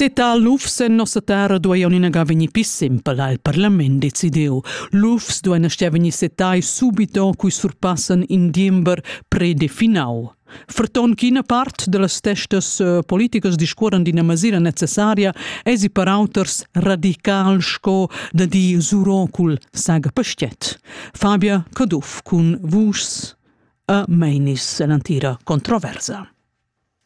Seta lufs en nossa terra dueien inaga vegnir pli simpel, ha il parlament decidiu. Lufs duein aschia vegnir setai subito cui surpassan in diember predefinau. Ferton ch'ina part dallas testas eh, politicas discuoran d'ina masira necessaria esi per auters radical sco da di Surocul saga pastiet. Fabia Caduff cun vuschs a Meinis e l'antira controversa.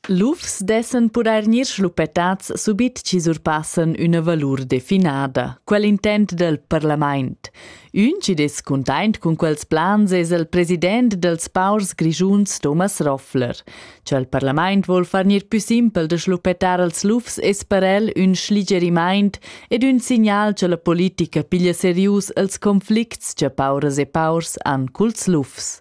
Lufs dessan pudair gnir schluppetats subit chi surpassan üna valur definada. Quel intent del parlamaint. Ün chi dess cuntaint cun quels plans es il president dels paurs grischuns Thomas Roffler. Cha il parlamaint vol far gnir pü simpel da schluppetar els lufs es per el ün schligerimaint ed ün signal cha la politica piglia serius els conflicts cha pauras e paurs han culs lufs.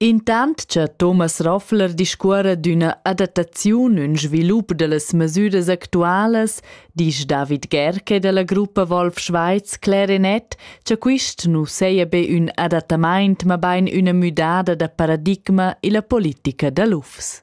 Intant cha Thomas Roffler discuorra d'üna adattaziun ün svilup da las masüras actualas, disch David Gerke da la gruppa Wolf Schweiz Clarinet cha quist nu saja be ün adattamaint, mabain üna müdada da paradigma illa politica da lufs.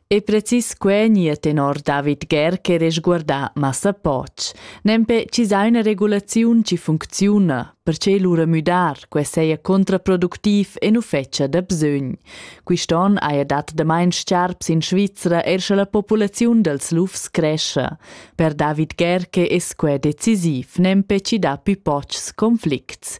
E precis quei gnir tenor David Gär che resguarda massa poch. Nempe chi sa üna regulaziun chi funcziuna, perche lura müdar que seia contraproductiv e nu fetscha da bsögn. Quist'on haja dat damain sciarps in Svizra er sche la populaziun dels lufs crescia. Per David Gär che es que decisiv nempe chi dà pü pochs conflicts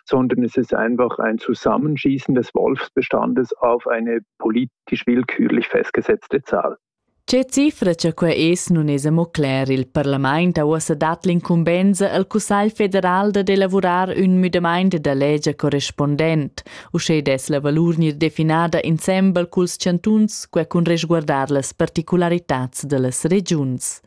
sondern es ist einfach ein Zusammenschießen des Wolfsbestandes auf eine politisch willkürlich festgesetzte Zahl. Che cifra cha quai es nun es amo cler, il parlament ha uossa dat l'incumbenza al Cussagl federal dad elavurar ün müdamaint da legia correspondent. Uschè dess la valur gnir definada insembel culs chantuns, quai cun resguardar las particularitats da las regiuns.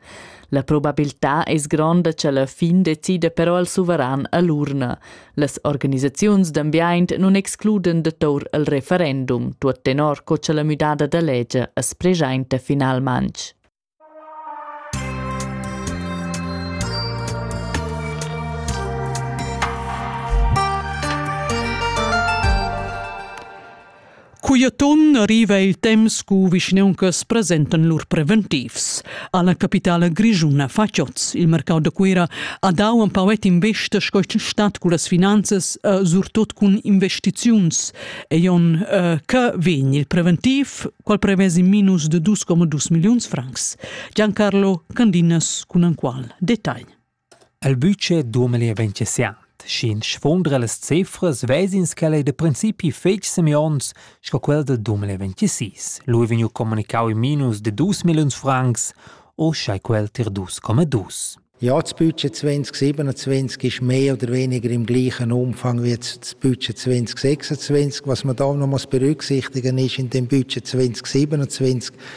La probabiltà es gronda cha la fin decida però il suveran a l'urna. Las organisaziuns d'ambiaint nun excluden da tour il referendum, tuot tenor co cha la müdada da legia as preschainta finalmang. Cugliatun riva il temps cu vischneuncas presentan lur preventivs. Alla capitala grischuna Facioz, il mercau da Cuera, ha dau un pauet investa sco il stat cu las finanzas, uh, surtot cun investiziuns. E jon, uh, che vegn il preventiv, qual prevesi minus de 2,2 milliuns francs. Giancarlo Candinas cun un qual detagl. El bütsch duomeli e ventgesiant, schi'ns sfuondra las cifras, vezins ch'el ei da principi fetg semions sco quel da duomeli e ventisís. Lu ei vegniu communicau in minus de dus milliuns francs, uschei quel tier dus coma dus. Ja, das Budget 2027 ist mehr oder weniger im gleichen Umfang wie das Budget 2026. Was man da noch muss berücksichtigen ist, in dem Budget 2027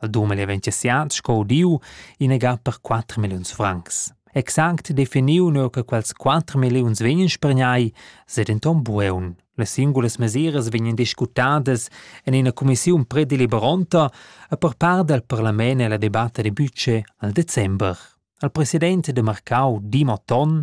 Il dumel ei ventissiat sco udiu inagà per quatter milliuns francs. Exact definiu neu che quels quatter milliuns vegnan spergnai, se denton bueun. Las singulas mesiras vegnan discutadas en ina commissiun predeliberonta e per part dal parlament e la debatta de budget al december. Il president de Marcau, Dimo Ton,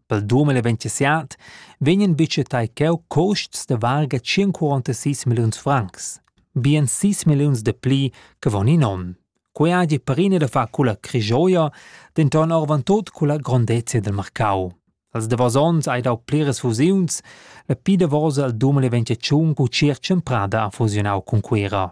Pel dumond da l'eventuasiat vegnan budgetai cheu cuosts da varga 146 milliuns francs, bien 6 milliuns de pli che von in onn. Quei hagi perina da far culla crijoia, denton orvan tot culla grondezia del marcau. Als davos onns hai dau pliras fusiuns, la pi davosa al dumond da l'eventuaziun cu Circen Prada ha fusionau cun Cuera.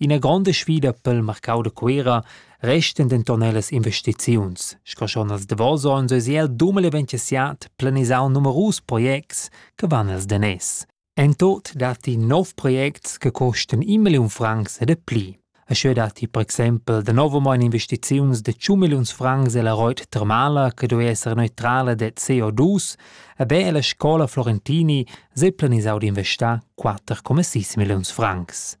Ina gronda sfida pel marcau da Cuera restan denton ellas investiziuns, sco schon als davos onns eis el dumel eventissiat planisau numerus projects che van els daners. En tot datti nov projects che costan in milliun francs e de pli. E scheu datti per exempel danovamein investiziuns de 100 milliuns francs ella reit termala che doi esser neutrala de CO2 e be ella scola Florentini sei planisau d'investar 4,6 milliuns francs.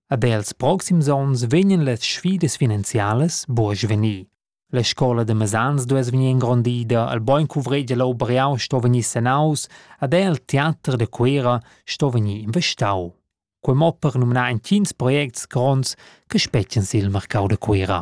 Ad els proxims onns vegnan las sfidas finanzialas buca svenir. La scola da mesans duess vegnir ingrondida, il bein cuvregl leu Briau sto vegnir sanaus ad el teater da Cuera sto vegnir investau. Quei mo per numnar entgins projects gronds che spetgan sil marcau da Cuera.